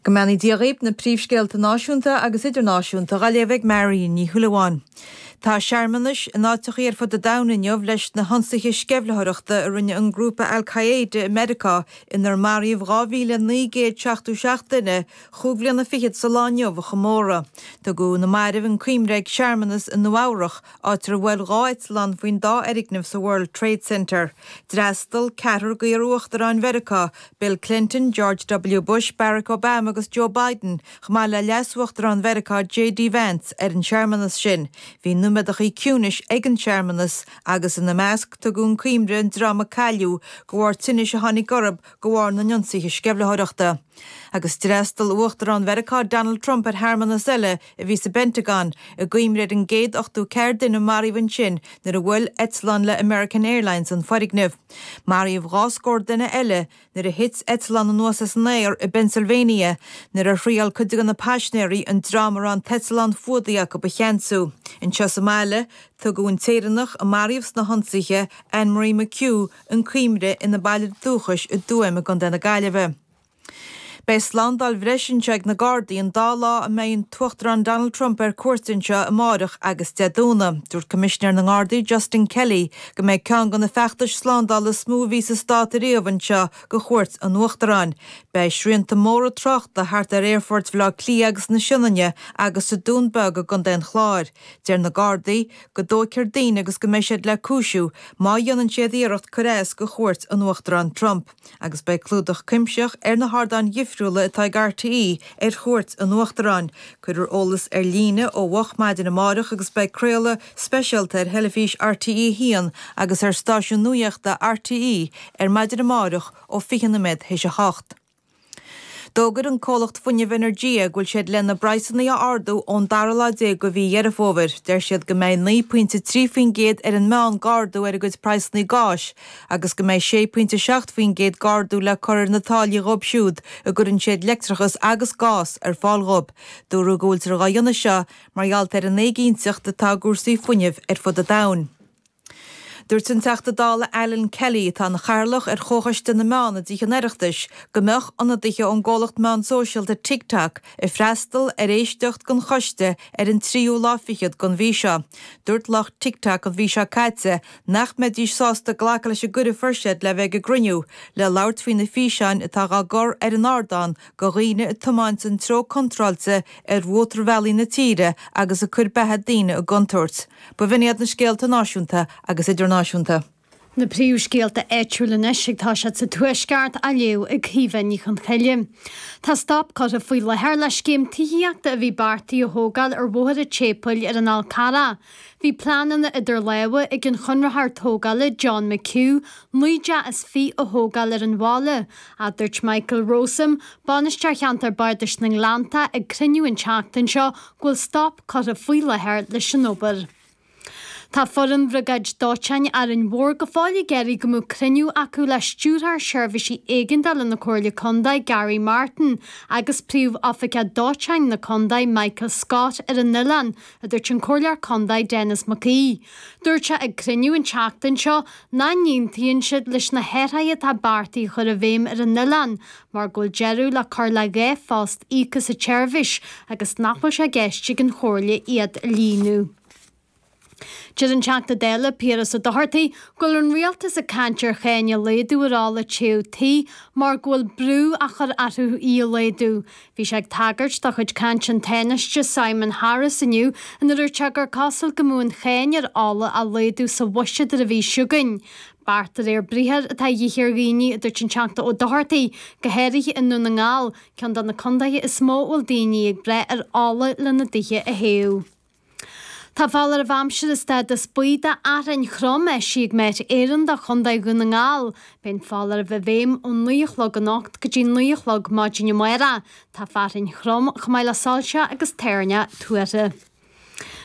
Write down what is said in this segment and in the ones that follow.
Go mbeannaí Dia dhaoib, na príomhscéalta náisiúnta agus idirnáisiúnta á léamh ag Marion Ní Shúilleabháin. Tá searmanais in áiteachaí ar fud an domhain inniu leis na hionsaithe sceimhlitheoireachta a rinne an grúpa Al Qaeda i Meiriceá inar maraíodh 2,977 duine chúig bliana fichead sa lá inniu a chomóradh. Tugadh na mairbh chun cuimhne ag searmanas i Nua Eabhrach áit ar bhuail dhá eitleán faoin dá fhoirgneamh sa World Trade Center. D'fhreastal ceathrar d'iar-uachtaráin Mheiriceá, Bill Clinton, George W. Bush, Barack Obama agus Joe Biden, chomh maith le leasuachtarán Mheiriceá JD Vance, ar an searmanas sin. Bhí nóiméadachaí ciúnais ag an searmanas agus ina measc tugadh chun cuimhne an dream a cailleadh de bharr tinnis a tháinig orthu de bharr na n-ionsaithe sceimhlitheoireachta. Agus d'fhreastal uachtarán Mheiriceá Donald Trump ar shearmanas eile, a bhí sa bPentagon, i gcuimhne ar an gcéad 80 ceathar duine a maraíodh ansin nuair a bhuail eitleán le American Airlines an foirgneamh. Maraíodh dhá scór duine eile nuair a thit eitleán anuas as an aer i bPennsylvania nuair a thriail cuid de na paisnéirí an dream a raibh an t-eitleán fuadaithe acu a cheansú. Anseo sa mbaile, tugadh an tÉireannach a maraíodh sna hionsaithe, Anne Marie McHugh, chun cuimhne ina baile dúchais i dTuaim i gContae na Gaillimhe. Beidh slándáil bhreise anseo ag na Gardaí an dá lá a mbeidh an tUachtarán Donald Trump ar cuairt anseo, amárach agus Dé Domhnaigh. Dúirt Coimisinéir na nGardaí, Justin Kelly, go mbeidh ceann de na feachtais slándála is mó a bhí sa Stát ariamh anseo go chuairt an Uachtaráin. Beidh srianta móra tráchta thart ar aerfoirt Bhaile Átha Cliath agus na Sionainne agus sa Dún Beag i gContae an Chláir. Deir na Gardaí go dtóigfear daoine agus go mbeidh siad le cúisiú má dhéanann siad iarracht cur as go chuairt an Uachtaráin Trump. Agus beidh clúdach cuimsitheach ar na hardáin difriúla atá ag RTÉ ar chuairt an Uachtaráin. Cuirfear eolas ar líne ó mhoch maidin amárach agus beidh craoladh speisialta ar theilifís RTÉ 1 agus ar stáisiún nuaíochta RTÉ ar maidin amárach ó 20 nóiméad théis a hocht. D'fhógair an comhlacht fuinnimh Energia go bhfuil siad lena bpraghsanna a ardú ón dara lá déag go mhí Dheireadh Fómhair. Deir siad go mbeidh naoi pointe trí faoin gcéad ar an meán g'ardú ar a gcuid praghsanna gáis, agus go mbeidh 6.7% g'ardú le cur ar na táillí dhóibh siúd a gcuireann siad leictreachas agus gás ar fáil dhóibh. Dúradh go bhfuiltear dhá dhéanamh seo mar gheallt ar an éiginnteacht atá i gcúrsaí fuinnimh ar fud an domhain. Dúirt an Teachta Dála Alan Kelly, atá ina Chathaoirleach ar Chomhchoiste na Meán i dTithe an Oireachtais, go mbeadh ionadaithe ón gcomhlacht meán sóisialta TikTok ag freastal ar éisteacht den choiste ar an tríú lá fichead den mhí seo. Dúirt lucht TikTok an mhí seo caite nach mbeidís sásta glacadh leis an gcuireadh fuair siad le bheith ag an gcruinniú le labhairt faoi na físeáin atá dhá gcur ar an ardán go dhaoine ag tiomáint an treo contráilte ar mhótarbhealaí na tíre agus ag cur beatha daoine i gcontúirt. Ba bh'in iad na scéalta náisiúnta agus idirnáisiúnta. Na príomhscéalta áitiúil anois ag tosú sa Tuaisceart á léamh ag Caoimhe Ní Chonchoille. Tá stop curtha faoi láthair le scéim tithíochta a bhí beartaithe a thógáil ar Bhóthar an tSéipéil ar an Fhál Carrach. Bhí pleananna idir lámha ag an chonraitheoir tógála John McHugh naoi dteach is fiche a thógáil ar an bhaile, a dúirt Michael Rowsome, Bainisteoir Cheantar Bardais na nGleannta ag cruinniú an tseachtain seo go bhfuil stop curtha faoi láthair leis an obair. Tá foireann Bhriogáid Dóiteáin Árainn Mhór go fóill ag iarraidh go mbeadh cruinniú acu le Stiúrthóir Seirbhísí Éigeandála na Comhairle Contae Garry Martin agus Príomh-Oifigeach Dóiteáin na Contae Michael Scott ar an oileán a dúirt an Comhairleoir Condae Denis Mac Aoidh. Dúirt sé ag cruinniú an tseachtain seo nach n-aontaíonn siad leis na hathruithe atá beartaithe a chur i bhfeidhm ar an oileán mar go bhfuil deireadh le cur le dhá phost íoctha sa tseirbhís agus nach bhfuil sé i gceist ag an Chomhairle iad a líonadh. Deir an Teachta Dála Piaras Ó Dochartaigh go bhfuil an Rialtas ag caint ar cháin a laghdu ar ola téamh tí mar go bhfuil brú á chur arthu í a laghdu. Bhí sé ag tagairt do chuid caint an Tánaiste Simon Harris inniu nuair a dúirt sé gur cosúil go mbeadh an cháin ar ola á laghdú sa bhuiséad ar an mhí seo chugainn. Beart de réir briathar atá a dhíth ar dhaoine, a dúirt an Teachta Ó Dochartaigh, go háirithe i nDún na nGall, ceann de na condaetha is mó a bhfuil daoine ag brath ar ola lena dtithe a théamh. Tá foláireamh aimsire stádas buí d'fhearthainn throm eisithe ag Met Éireann do Chontae Dhún na nGall. Beidh an foláireamh i bhfeidhm ón naoi a chlog anocht go dtí naoi a chlog maidin amárach. Tá fearthainn throm chomh maith le soilse agus toirneach tuartha.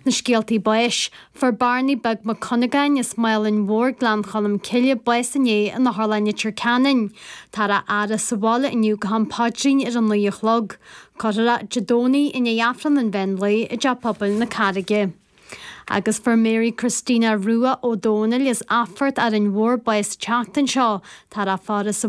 Na scéaltaí báis. Fuair Barney Beag Mac Cuinneagáin as Málainn Mhóir, Gleann Cholm Cille, bás inné in Otharlann Leitir Ceanainn. Tá a fhaire sa bhaile inniu go ham paidrín ar an naoi a chlog. Cuirfear é Dé Domhnaigh i ndiaidh Aifreann an Mheán Lae i dTeach Pobail na Carraige. Agus fuair Mary Christina Rua Ó Dónaill as Athphort Árainn Mhór bás an tseachtain seo, tórrófar í sa.